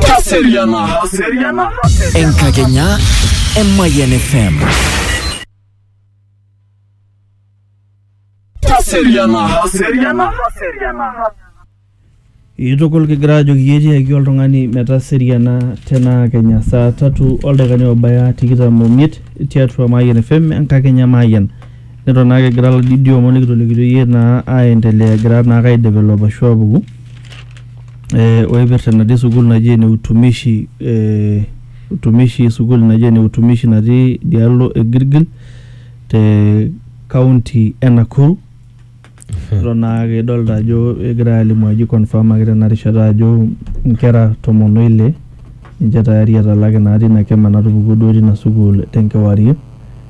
Taseriana. Enkakenya e Mayian FM. Taseriana. Itukul kigira ajoki iyie tiaki oltung'ani metaseriana tenaa kenya saa tatu oldakikani obaya tikitam omiet tiatua Mayian FM enkakenya Mayian. Neton naa kigira ladidio omon nikitolikito iyie naa aendelea egira naa aidevelop ashu apuku. eh, oipirta enatii sukuul naji ene utumishi eh, utumishi sukuul naji ene utumishi natii dialo e Gilgil te kaunti e Nakuru eton naake idolta ajo egirae alimu ajo ikonfamaki tena rishata ajo inkera tomon oile ninche tayari etalaki naa tina kima natupukuo duo tina sukuul tenkewarie.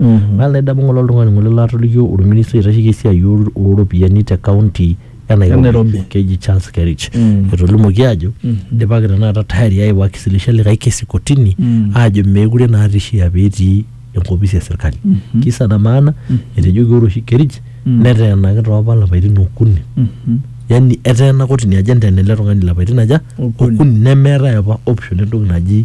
Mm. Naa laidamu ng'ole oltung'ani ng'ole laatolikio olministai oitasheki esiai oo oo ropiyiani te kaunti e Nairobi, E Nairobi. keji Charles Kerich. Mm. Etolimuoki aajo eidipaki tenakata tayari aaeu aisilisha likae kesi kotini Mm. aajo meekure naa eishia pee etii enkopisi e serkali. Kisa na maana etejoki ore oshi Kerich Mm. neteenaki too apa lapaitin okuni. Mhm. Yani eteena kotini ajo enteena ele tung'ani lapaitin aja? Okuni. Okuni nemeetae apa option entoki naji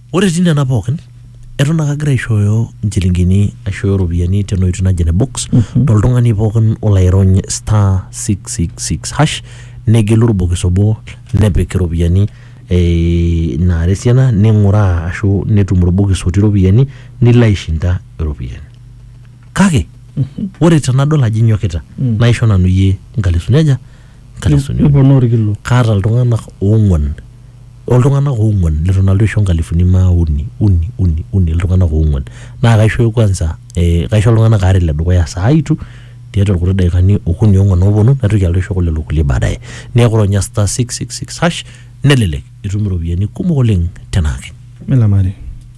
Ore etii nena pookin eton ake agira aishooyo nchilingini aishooyo ropiyiani tena oitoi naji ene box toltung'ani pookin olo airony star 666 hash negelu orbokis obo nepik iropiyiani eh, naara esiana ning'uraa ashu netum orbokis otii iropiyiani nilo aishinda iropiyiani kake ore tenadol ajo inyokita naisho nanu iyie nkalisuni aja nkalisuni uni. Niponaa orkilo. kaata iltung'anak oong'uan o iltung'anak oong'uan leton alotu aisho nkalifuni maa uni uni uni uni iltung'anak oong'uan naa kaisho kwanza eh, kaisho iltung'anak aare le dukuya saa itu tiatua irkuti daikani okuni ong'uan ooponu naitoki alotu aisho kulelo kulie baadaye neeku ronya star 666 hash nelelek itum iropiyiani kumok oleng tenaake. Milamari.